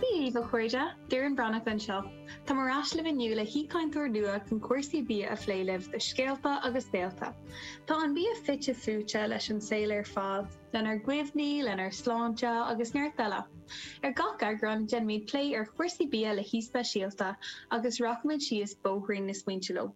Dia dhaoibh, a chairde! Doireann Breathnach anseo. Táim ar ais libh inniu le haoichainteoir nua chun cúrsaí bia a phlé libh do Scéalta agus Saolta. Tá an bia fite fuaite leis an saol ar fad, lenár gcuimhní, lenár sláinte agus neart eile. Ar gach eagrán, déanfaimid plé ar chúrsaí bia le haoi speisialta agus rachaimid síos bóithrín na smaointe leo.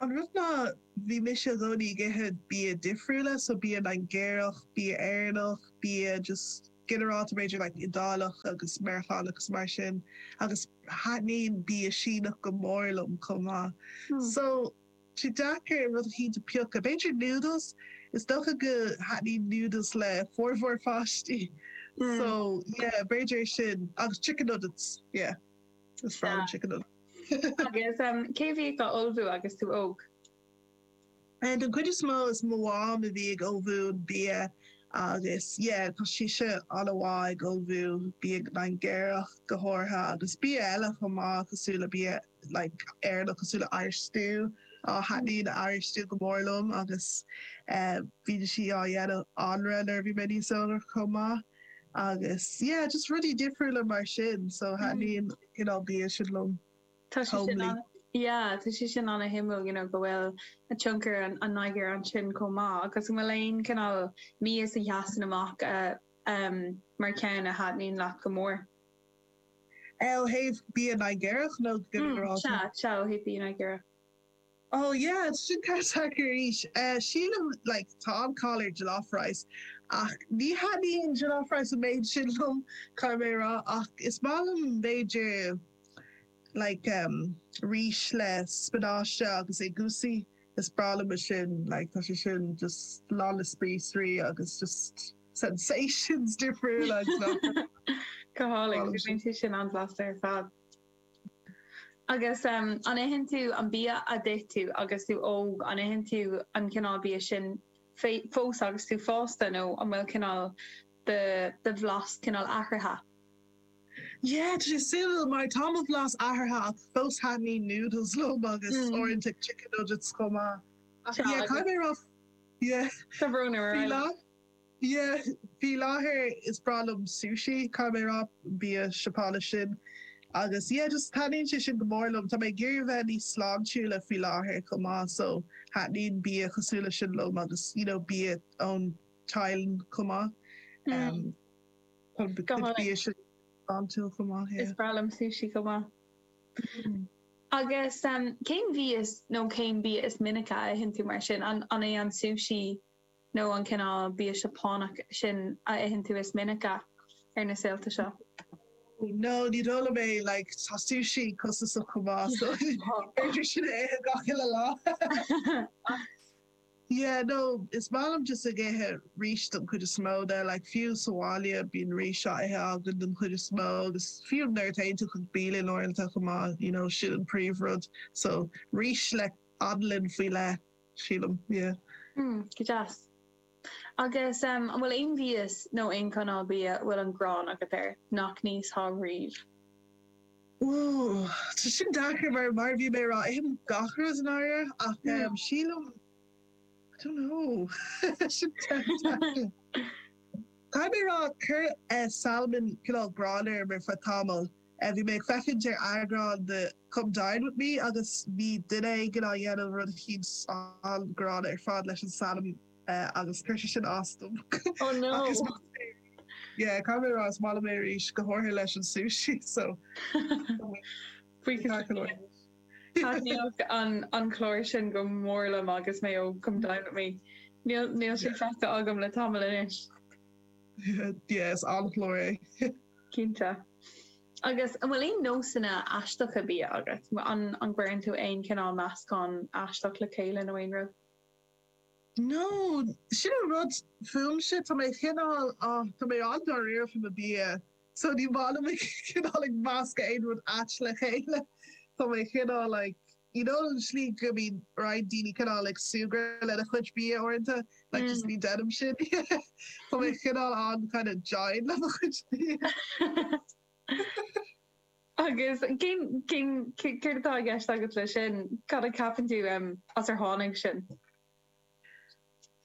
An rud ná bhí mise i gcónaí ag ithe bia difriúla, so bia Nigéarach, bia Éireannach, bia just ginearálta b'fhéidir like Iodáileach agus Meiriceánach agus mar sin agus thaitníonn bia Síneach go mór liom chomh maith so tá sé deacair rud eicínt a phiocadh. B'fhéidir noodles, is dócha go thaitníonn noodles le formhór pháistí so yeah b'fhéidir sin agus chicken nuggets yeah. Is fearr liom chicken an. Agus cé a bhí á ullmhú agus tú óg? Den chuid is mó is mo mham a bhí ag ullmhú an bia agus yeah tá sise an-mhaith ag ullmhú bia Nigéarach go háirithe agus bia eile chomh maith cosúil le bia like Éireannach cosúil le Irish stew. Á thaitníonn Irish stew go mór liom agus bhíodh sí ag déanamh anraith nuair a bhí mé níos óige chomh maith. Agus yeah, just rudaí difriúla mar sin, so thaitníonn you know bia sin liom. Tá sé sin Homely. ana, yeah, tá sé sin an-suimiúil you know go bhfuil a tionchar an an Nigéir ansin chomh maith agus an bhfuil aon cineál mias a sheasann amach a em mar cheann a thaitníonn leat go mór? Eh ó thaobh bia Nigéarach nó go Mm, sea, ginearálta? sea ó thaobh bia Nigéarach. Oh yeah, sin ceist deacair arís. Sílim like tá an-cháil ar jollof rice ach ní thaitníonn jollof rice an méid sin liom, caithfidh mé a rá, ach is maith liom b'fhéidir like em rís le spionáiste agus egusi, is breá liom é sin like tá sé sin just lán le spíosraí agus just sensations difriúla, you know. Go hálainn, bíonn sé sin an-bhlasta ar fad. Agus an itheann tú an bia a d'ith tú agus tú óg? An itheann tú an cineál bia sin fós agus tú fásta nó an bhfuil cineál de do bhlas cineál athraithe? Yeah, tá sé suimiúil mar tá mo bhlas athraithe ach fós thaitníonn noodles liom agus uaireanta chicken nuggets chomh maith. Ach yeah, caithfidh mé a rá yeah, Tá brón orm. faoi láthair. Yeah, faoi láthair is breá liom sushi, caithfidh mé a rá, an bia Seapánach sin. Agus yeah, just taitníonn sé sin go mór liom. Tá mé ag iarraidh a bheith níos sláintiúla faoi láthair chomh maith, so thaitníonn bia cosúil leis sin liom agus you know bia ón Thailand chomh maith. Em, Mm, tá a go gcuid bia hálainn. sin sláintiúil chomh maith, Is yeah. breá liom sushi chomh maith. Mm. Agus em, cén mhí is, nó cén bia is minice a itheann tú mar sin? An, an é an sushi nó an é an cineál bia Seapánach sin a itheann tú is minice ar na saolta seo? No, ní dóigh liom é, like tá sushi costasach chomh maith so ní féidir sin a ithe gach uile lá ach yeah no is maith liom just ag ithe rís don chuid is mó de, like fiú sa bhaile bíonn rís á ithe againn don chuid is mó agus fiú nuair a théann tú chuig bialann uaireanta chomh maith you know sin an príomh rud so rís le anlann faoi leith. sílim, yeah. Hmm, go deas. Agus an bhfuil aon mhias nó aon chineál bia a bhfuil an ghráin agat air nach n-íosfá riamh? Ooh, tá sin deacair mar, mar a bhí mé a rá, ithim gach rud i ndáiríre ach em sílim, I don't know, sin ceist deacair. Caithfidh mé a rá, chuir eh salmon cineál gráin orm ar feadh tamaill. Bhí mé ag féachaint ar eagrán de Come Dine With Me agus bhí duine éigin á dhéanamh rud eicínt an-ghránna ar fad leis an salmon agus chuir sé sin as dom. Oh no! Ach is maith liom é arís. Yeah, caithfidh mé a rá, is maith liom é arís, go háirithe leis an sushi, so Freakas ar fad. Thaitníodh an clár sin go mór liom agus mé óg, Come Dine With Me. Níl sé feicthe agam le tamall anois. yeah is an-chlár é. Cinnte. Agus an bhfuil aon nósanna aisteacha bia agat? An an gcuireann tú aon cineál meascán aisteach le chéile nó aon rud? No, sin an rud fúmse, tá mé cineál ah tá mé an-dáiríre faoi mo bia so ní maith liom cineál ag meascadh aon rud ait le chéile. Tá mé cineál like. you know an slí go mbíonn roinnt daoine cineál ag súgradh lena chuid bia uaireanta like just ní deinim sin tá mé cineál an- kind of dian le mo chuid bia. Agus cén cén céard atá i gceist agat le sin? Cad a ceapann tú um as ar tháinig sin?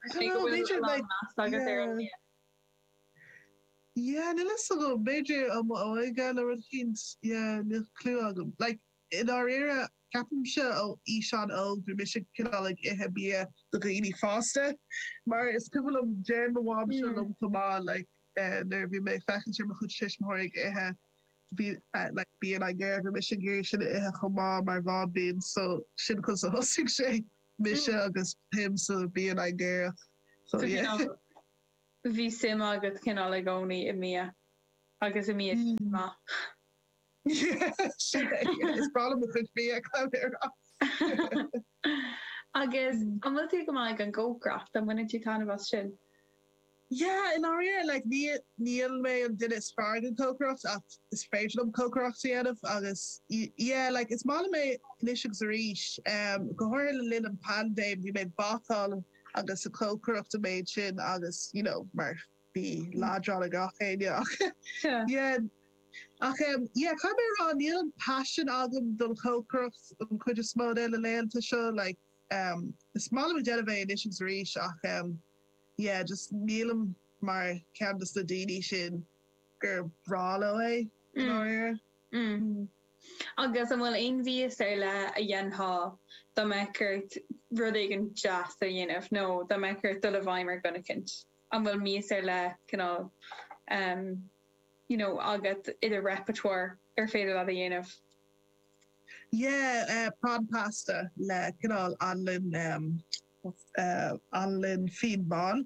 I don't know b'fhéidir like meas agat ar an bia? Yeah níl fhios agam b'fhéidir óm óige nó rud éicint yeah níl clue agam like I ndáiríre, ceapaimse ó aois an-óg bhí mise cineál ag ithe bia do dhaoine fásta mar is cuimhin liom, deir mo mhamsa liom chomh maith like nuair bhí mé ag féachaint ar mo chuid tuismitheoirí ag ithe bhí like bia Nigéarach bhí mise ag iarraidh sin a ithe chomh maith mar bháibín so sin conas a thosaigh sé mise agus mo shuim sa bhia Nigéarach so yeah. bhí suim agat cineál i gcónaí i mbia agus i mbia maith? Is breá liom mo chuid bia ag dul ar ais. Agus an bhfuil tú go maith ag an gcócaireacht? An mbaineann tú taitneamh as sin? Yeah, i ndáiríre, like ní, níl mé an duine is fearr ag an gcócaireacht ach is féidir liom cócaireacht a dhéanamh agus yeah, like is maith liom é anois agus arís. Go háirithe le linn an phaindéim bhí mé ag bácáil agus ag cócaireacht an méid sin agus you know mar Bí leadrán ag gach éinne ach yeah. Ach em, yeah, caithfidh mé a rá, níl an paisean agam don chócaireacht an chuid is mó de na laethanta seo, like, em, is maith liom a déanamh é anois is arís ach em, yeah, just nílim mar cheann de na daoine sin gur bhreá leo é, i ndáiríre. Mm, mm. Mm. Agus an bhfuil aon mhias ar leith a dhéanfá dá mbeadh ort rud éigin deas a dhéanamh nó dá mbeadh ort dul i bhfeidhm ar dhuine eicint? An bhfuil mias ar leith, cineál, em, you know, agat i do repertoire ar féidir leat a dhéanamh? Yeah, eh, prawn pasta le, cineál, anlann, em, eh, anlann fíon bán.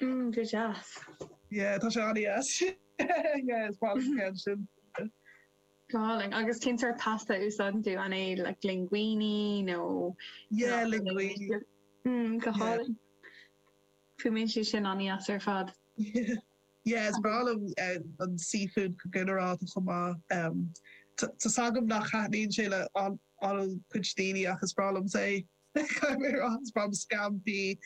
Mm, go deas. Yeah, tá sé an-deas. Yeah, is maith liom ceann sin. Go hálainn, agus cén sórt pasta a úsáideann tú? An é like linguine nó? Yeah, linguine. Mm, go hálainn. Fuaimíonn sé sin an-deas ar fad. Yeah, is breá liom an seafood go ginearálta chomh maith. Tá's agam nach thaitníonn sé le an-chuid daoine ach is breá liom é. Caithfidh mé a rá, is breá liom scampí,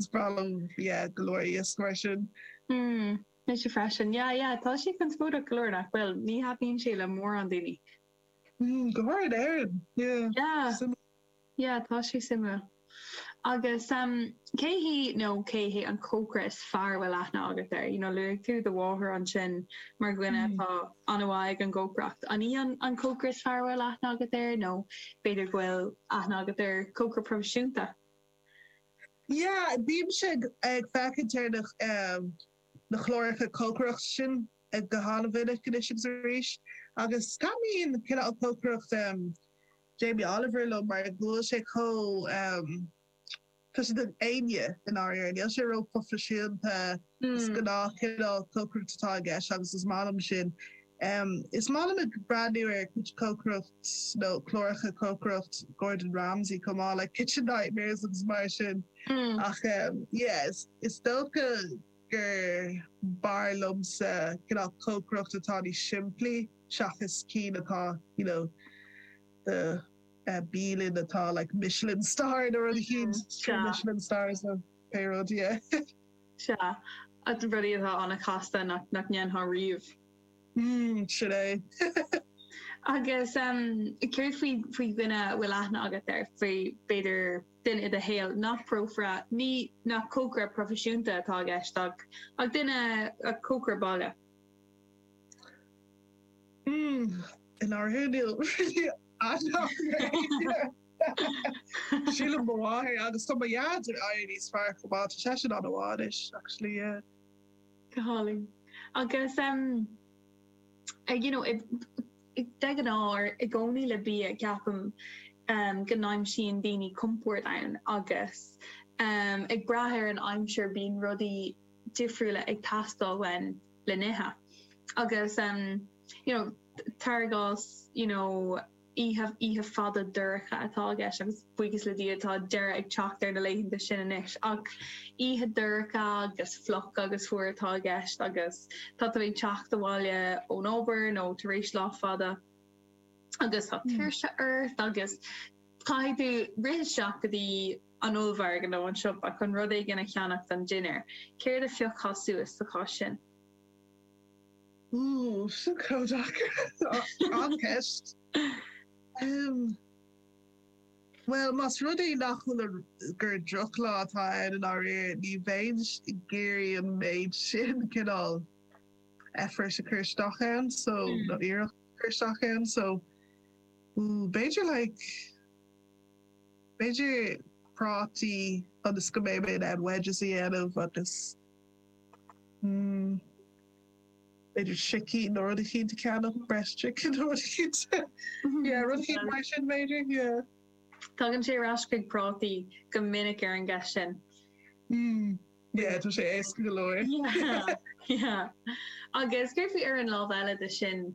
is breá liom yeah, go leor iasc mar sin. Hmm, mise freisin. Yeah, yeah, tá sé conspóideach go leor, nach bhfuil? Ní thaitníonn sé le mórán daoine. Hmm, go háirithe in Éirinn, yeah. Yeah. Yeah, tá sé suimiúil. Agus cé hí nó cé hé an cócaire is fearr a bhfuil aithne agat air? You know, luaigh tú do mháthair ansin mar dhuine atá an-mhaith ag an gcócaireacht. An í an cócaire is fearr a bhfuil aithne agat air nó b'fhéidir go bhfuil aithne agat ar chócaire proifisiúnta? Yeah, bímse ag féachaint ar na na cláracha cócaireachta sin go han-mhinic anois agus arís. Agus taitníonn cineál cócaireacht. Jamie Oliver liom mar go bhfuil sé chomh, tá sé do éinne i ndáiríre. Níl sé ró-proifisiúnta, is gnáth cineál cócaireacht atá i gceist agus is maith liom sin. Is maith liom ag breathnú ar cuid cócaireacht nó cláracha cócaireacht Gordon Ramsay chomh maith, like Kitchen Nightmares agus mar sin ach yeah, is dócha. gur b'fhearr liomsa cineál cócaireacht atá níos simplí seachas cinn atá you know do bhialann atá like Michelin star nó rud eicínt, trí Michelin stars nó pé rud yeah. Sea. Rudaí atá an-chasta nach ndéanfá riamh. Mm, sin é. Agus céard faoi dhuine a bhfuil aithne agat air, faoi b'fhéidir. duine i do shaol nach prófara, ní nach cócaire proifisiúnta atá i gceist, ach ach duine, ach cócaire baile. Hmm, in áirithe níl really Sílim mo mháthair agus tá mo dhaid ag éirí níos fearr chomh maith, tá seisean an-mhaith anois actually yeah. Go hálainn. Agus ehm, eh, you know, De ghnáth, i gcónaí le bia, ceapaim go n-aimsíonn daoine compord ann agus ag brath ar an aimsir bíonn rudaí difriúla ag teastáil uainn le n-ithe agus you know, cuir i gcás you know, oíche oíche fhada dorcha atá i gceist agus. Buíochas le Dia tá deireadh ag teacht ar na laethanta sin anois ach oíche dorcha agus fliuch agus fuar atá i gceist agus tá tú ag teacht abhaile ón obair nó tar éis lá fada agus tá tuirse ort agus caithfidh tú rith isteach go dtí an ollmhargadh nó an siopa chun rud éigin a cheannach don dinnéar. Céard a phiocfá suas sa chás sin? Úúú, sin chomh deacair! An-cheist. Bhuel, más rud é nach bhfuil an, gur drochlá atá ann i ndáiríre, ní bheinn ag iarraidh an méid sin cineál effort a chur isteach ann so, nó iarracht a chur isteach ann so ooh b'fhéidir like, b'fhéidir prátaí ionas go mbeidh mé in ann wedges a dhéanamh agus mm. b'fhéidir sicín nó rud eicínt a cheannach, breast chicken nó rud eicínt yeah rud eicínt mar sin b'fhéidir yeah. Tagann sé ar ais chuig prátaí go minic ar an gceist sin. Mm yeah tá sé éasca go leor. Yeah yeah. Agus céard faoi ar an lámh eile de sin?